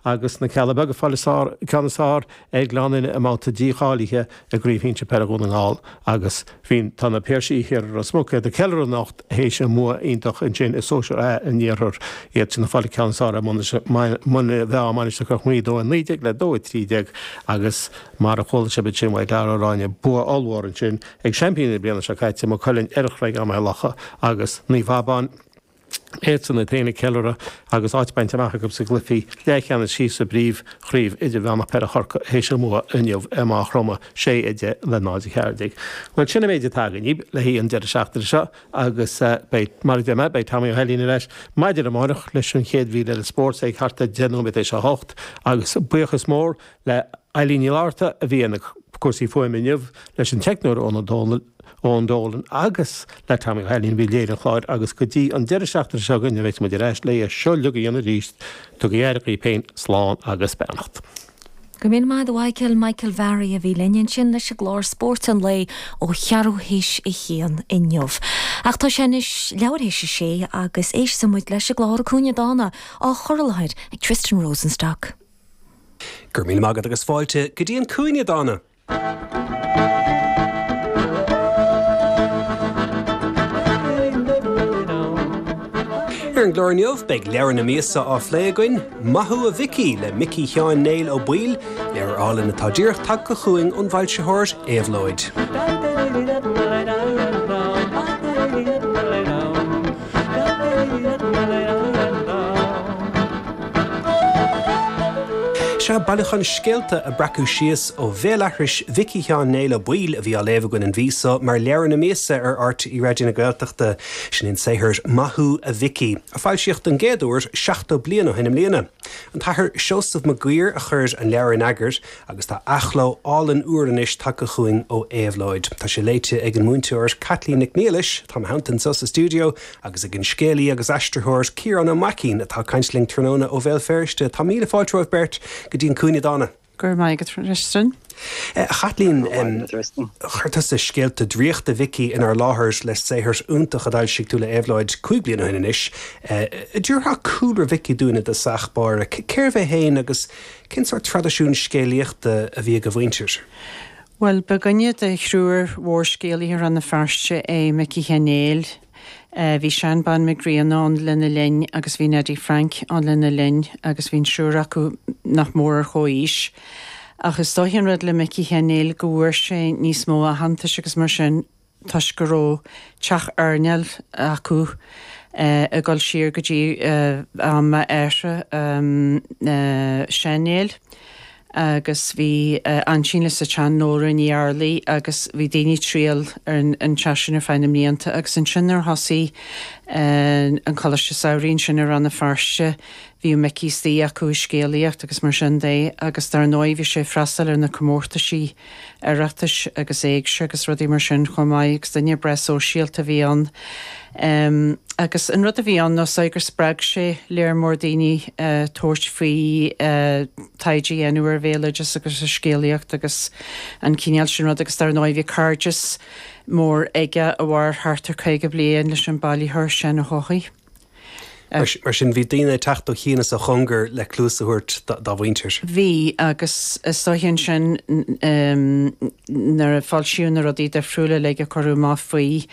agus na Cealla Beaga ag fáil an ceann is fearr ar Ghleann Fhinne i mbabhta dícháilithe i gCraobh Shinsear Peile Dhún na nGall agus tá na Piarsaigh thiar i Ros Muc ag ceiliúradh anocht théis a mbua iontach ansin i Sóisear A an iarthair iad sin ag fáil an ceann is fearr ar Mhuine Mheá Mainistir Chnoc Muaidhe 2 19 le 2 13 agus mar a chuala sibh ansin uaidh Darragh Ó Ráinne bua ollmhór ansin ag seaimpíní na bliana seo caite, Maigh Cuilinn, ar Chreagán Maigh Locha agus Naomh Abán. tá siadsan iad féin ag ceiliúradh agus áit bainte amach acu sa gcluifí leathcheannais síos sa bpríomhchraobh idirmheánach Peile Chorcaí théis a mbua inniu i Maigh Chromtha, 6 10 le 0 14. Bhuel, sin an méid atá againn le haghaidh an deireadh seachtaine seo agus beidh, mar a deir mé, beidh Tommy Ó hAilín ar ais maidin amárach leis an chéad mhír eile spóirt ag thart ar deich nóiméad théis a hocht agus buíochas mór le Eilín Ní Fhlaithearta a bhí ar na cúrsaí fuaime inniu, leis an teicneoir Eoghan Ó Dónaill, Eoin Dolan agus le Tommy Ó hAilín a bhí ag léiriú an chláir agus go dtí an deireadh seachtaine seo chugainn a bheas muid ar ais le é seo uilig a dhéanamh arís. Tugaigí aire dhaoibh féin, slán agus beannacht. Go raibh míle maith agat a Mhichael, Michael Varry a bhí linn ansin leis an gclár Spóirt an Lae ó cheathrú théis a haon inniu. Ach tá sé anois leathuair théis a sé agus éistfidh muid leis an gclár An Cúinne Dána á chur i láthair ag Tristan Rosenstock. Go raibh míle maith agat agus fáilte go dtí An Cúinne Dána. Ar an gclár inniu, beidh Leabhar na Míosa á phlé againn, Maith thú a Mhicí le Micí Sheáin Néill Ó Baoill, leabhar álainn atá díreach tagtha chugainn ón bhfoilsitheoir Éabhlóid. Seo bailiúchán scéalta a breacadh síos ó bhéalaithris Mhicí Sheáin Néill Ó Baoill a bhí á léamh againn an mhí so mar Leabhar na Míosa ar RTÉ Raidió na Gaeltachta. Sin é an saothar Maith Thú a Mhicí! a foilsíodh don gcéad uair 70 bliain ó shin i mbliana. An tAthair Seosamh Maguidhir a chuir an leabhar in eagar Agus tá athchló álainn úr anois tagtha chugainn ó Éabhlóid. Tá sé léite ag an múinteoir Caitlín Nic Niallais, atá i mo theannta anseo sa stiúideo, agus ag an scéalaí agus aistritheoir Ciarán Ó Maicín, atá ag caint linn tráthnóna ó Bhéal Feirste. Tá míle fáilte romhaibh beirt go dtí An Cúinne Dána. Go raibh maith agat, a Tristan. A Chaitlín, chuir tusa Scéalta Draíochta Mhicí inár láthair le saothar iontach a d'fhoilsigh tú le Éabhlóid cúig bliana ó shin anois. An dtabharfá cúlra Mhicí dúinn i dtosach báire, cérbh é féin agus Cén sórt traidisiún scéalaíochta a bhí ag a mhuintir? Bhuel, ba dhuine de thriúr mhórscéalaithe Rann na Feirste é Micí Sheáin Néill. Bhí Seán Bán Mac Grianna ann lena linn agus bhí Neidí Frainc ann lena linn agus bhí an triúr acu nach mór ar chomhaois. Ach is dóichí an rud le Micí Sheáin Néill go bhfuair sé níos mó aitheantais agus mar sin, toisc go raibh teach airneáil acu ag dul siar go dtí am a athar Seán Néill agus bhí aintín leis ansin, Nóra Ní Fhearghaile agus bhí daoine ag triall ar an teach sin ar feadh na mblianta agus ansin nuair a thosaigh an coláiste samhraidh ansin i Rann na Feirste bhíodh Micí istigh acu ag scéalaíocht agus mar sin de agus dar ndóigh bhí sé ag freastal ar na comórtaisí Oireachtais agus éigse agus rudaí mar sin chomh maith agus duine breá sóisialta a bhí ann agus an rud a bhí ann ná gur spreag sé léar mór daoine tabhairt faoi taighde a dhéanamh ar bhéaloideas agus ar scéalaíocht agus an cineál sin rud agus dar ndóigh bhí cairdeas mór aige a mhair thart ar 50 bliain leis an bailitheoir Seán Ó hEochaidh. Mar sin, bhí daoine ag teacht ó chéin is ó chóngar le cluas a thabhairt dá mhuintir. Bhí, agus is dóiche ansin nuair a foilsíodh na rudaí difriúla uilig a cuireadh amach faoi,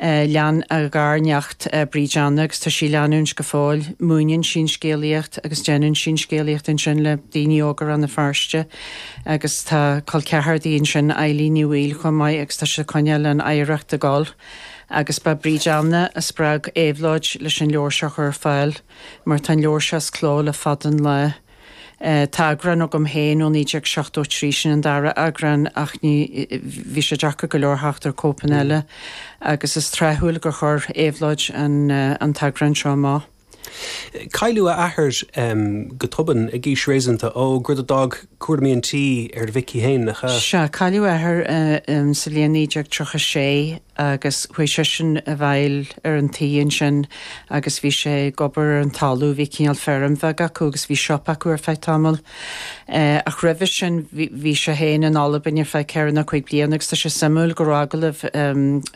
lean a ghairneacht, Bríd Anna, agus tá sí ag leanúint go fóill, múineann sí an scéalaíocht agus déanann sí an scéalaíocht ansin le daoine óga Rann na Feirste agus tá col ceathar di ansin, Eilín Ní Bhaoill, chomh maith agus tá siad ag coinneáil an oidhreacht ag dul. Agus ba í Bríd Anna a spreag Éabhlóid leis an leabhar seo a chur ar fáil, mar tá an leabhar seo as cló le fada an lá. Tá eagrán agam féin ó 1973, sin an dara eagrán, ach ní, bhí sé deacair go leor theacht ar cóipeanna eile, agus is tráthúil gur chuir Éabhlóid an an t-eagrán seo amach. Cailleadh a athair go tobann ag aois réasúnta óg, rud a d'fhág cúraimí an tí ar Mhicí féin. Á, sea, cailleadh a athair sa bhliain 1936 agus chuaigh seisean i bhfeighil ar an tigh ansin agus bhí sé ag obair ar an talamh. Bhí cineál feirm bheag acu agus bhí siopa acu ar feadh tamaill. Ach roimhe sin bhí sé féin in Albain ar feadh ceithre nó cúig bliana agus tá sé suimiúil go raibh agallamh,